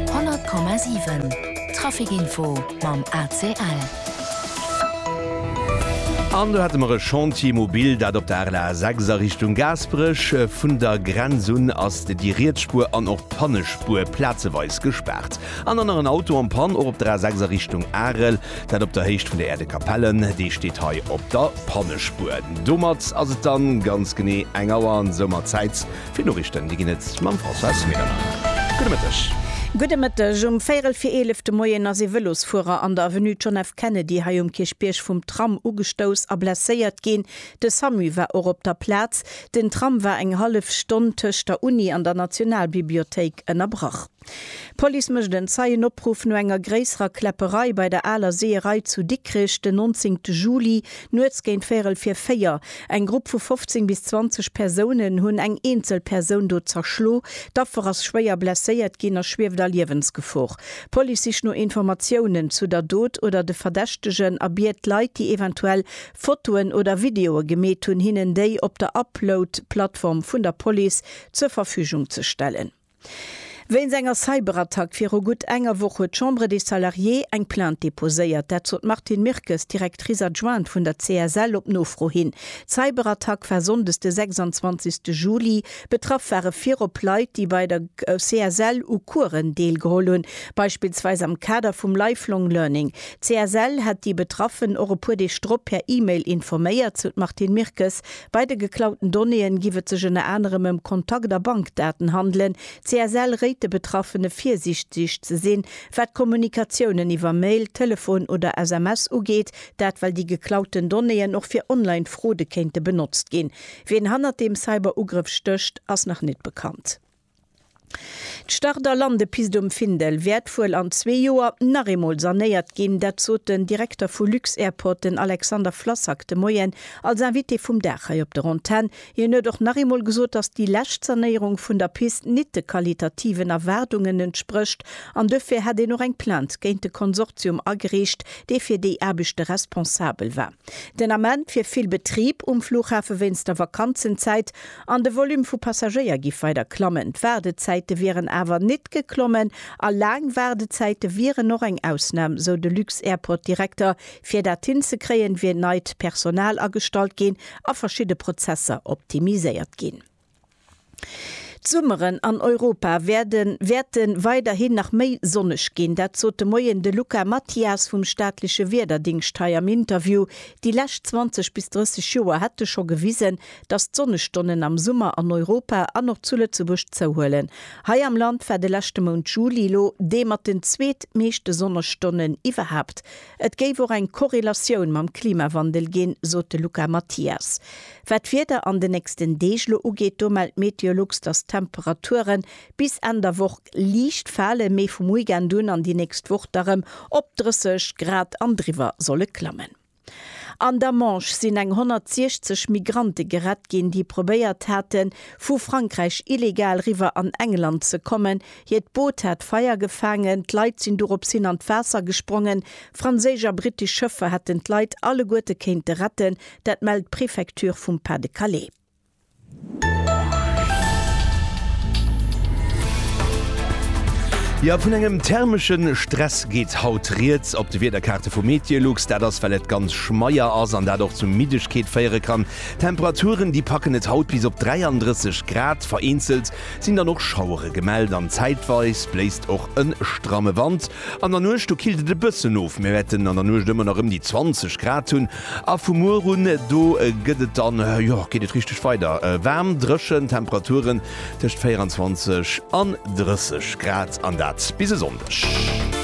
100,7 Trafic Info mam ACL. An do hate mer e Chantier mobil, dat op der RLA 6 a Richtung Gaasperech. Vun der Grenz un ass déi riets Spuer an och d'Pannespuer plazeweis gespaart. An dann nach en Auto am Pann, och op der A 6 a Richtung Arel, dat op der Héicht vun der Aire de Capelle. Dee steet hei op der Pannespuer. Domat ass et dann ganz genee eng Auer an soumat Zäit, Vill Noriichten, déi ginn et mam Françoise Medernach. Gudde Mëtteg. Gudde Mëtteg. Um véierel fir eelef de Moien ass ee Vëlosfuerer an der Avenue John F. Kennedy hei um Kierchbierg vum Tram ugestouss a blesséiert ginn. De Samu war och op der Plaz. Den Tram war eng hallef Stonn tëscht der Uni an der Nationalbibliothéik ënnerbrach. D'Police mécht en Zeienopruff no enger gréisserer Kläpperei bei der Aler Seeërei zu Dikrech den 19 Juli nuets géint véierel vir véier. Eng Grupp vu 15 bis 20 Persounen hunn eng eenzel Persoun do zerschlo. D'Affer ass schwéier blesséiert ginn a schwieft a Liewensgefor. D'Police sicht no Informatiounen zu der Dot oder de Verdächtegen a biet d'Leit, déi eventuell Fotoen oder Videoe gemeet hunn, hinnen déi op der Upload-Plattform vun der Police zur Verfügung ze stellen. Wéinst enger Cyberattack viru gutt enger Woch huet d'Chambre des Salariés eng Plainte deposéiert. Dat sot d'Martine Mirkes, Directrice adjointe vun der CSL, op Nofro hin. D'Cyberattack war sonndes de 26 Juli. Betraff ware virop Leit, déi bei der CSL u Coursen deelgeholl hunn, beispillsweis am Kader vum Lifelong Learning. D'CSL hätt déi Betraffen och e puer Deeg drop per E-Mail informéiert, sou d'Martine Mirkes. Bei de geklauten Donnéeën giff et sech ënner anerem ëm Kontakt a Bankdaten handelen. D'CSL réit de Betraffene virsiichteg ze sinn, wat d'Kommunikatiounen iwwer Mail, Telefon oder SMS ugeet, dat well déi geklauten Donnéeën och fir online Fraude kéinte benotzt ginn. Wien hannert deem Cyber-Ugrëff stécht, ass nach net bekannt. D'Start a Landepist um Findel wäert wuel an zwee Joer nach eemol sanéiert ginn. Dat sot den Direkter vu Lux-Airport, den Alexander Flassak, de Moien als Invité vum Dag hei op der Antenn. Hien huet och nach eemol gesot, dass déi lescht Sanéierung vun der Pist nit de qualitativen Erwaardungen entsprécht an duerfir hätt een och eng Plainte géint de Konsortium agereecht, dee fir déi Aarbechte responsabel war. Den Ament wier vill Betrib um Flughafe wéinst der Vakanzenzäit An de Volume vu Passagéier giff weider klammen. D'Waardezäite wieren awer nit geklommen a laang Waardezäite wieren och eng Ausnahm, sou de Lux-Airport-Direkter. Fir dat hinzekréien, wier neit Personal agestallt ginn a verschidde Prozesser optimiséiert ginn. D'Summeren an Europa wäerde wäerte weiderhin nach méi sonneg ginn. Dat sot de Moien de Luca Mathias vum staatleche Wiederdingscht hei am Interview. Déi lescht 20 bis 30 Joer hätte scho gewisen, dass d'Sonnestonnen am Summer an Europa an och zu Lëtzebuerg zouhuelen. Hei am Land war de leschte Mount Juli lo dee mat den zweetmeeschte Sonnestonnen iwwerhaapt. Et géif och eng Korrelatioun mam Klimawandel ginn, sot de Luca Mathias. Wat d'Wieder an den nächsten Deeg lo ugeet, do mellt Meteolux, dass d'Temperature bis Enn der Woch liicht falen, mee vum Weekend un an déi nächst Woch da rëm op 30 Grad an driwwer solle klammen. An der Manche sinn eng 160 Migrante gerett ginn, déi probéiert haten, vu Frankräich illegal riwwer an England ze kommen. Hiert Boot hat Feier gefaangen, d'Leit sinn dorops hin an d'Waasser gesprongen. Franséisch a brittesch Schëffer hätten d'Leit alleguerte kéinte retten, dat mellt d'Prefecture vum Pas-de-Calais. Jo, vun engem thermesche Stress geet haut Rieds op de Wiederkaarte vu Meteolux. Dat ass well et ganz schmeier ass an dat och zu Middegkeet féiere kann. D'Temperaturen déi packen et haut bis op 33 Grad. Vereenzelt sinn dann och Schauere gemellt an zäitweis bléist och e stramme Wand. An der Nuecht do killt et e bëssen of, mir wäerten an der Nuecht ëmmer nach ëm déi 20 Grad hunn. A vu muer un, do gëtt et dann, jo, geet et richteg weider waarm, dréchen, Temperaturen tëscht 24 an 30 Grad, an dat bis e Sonndeg.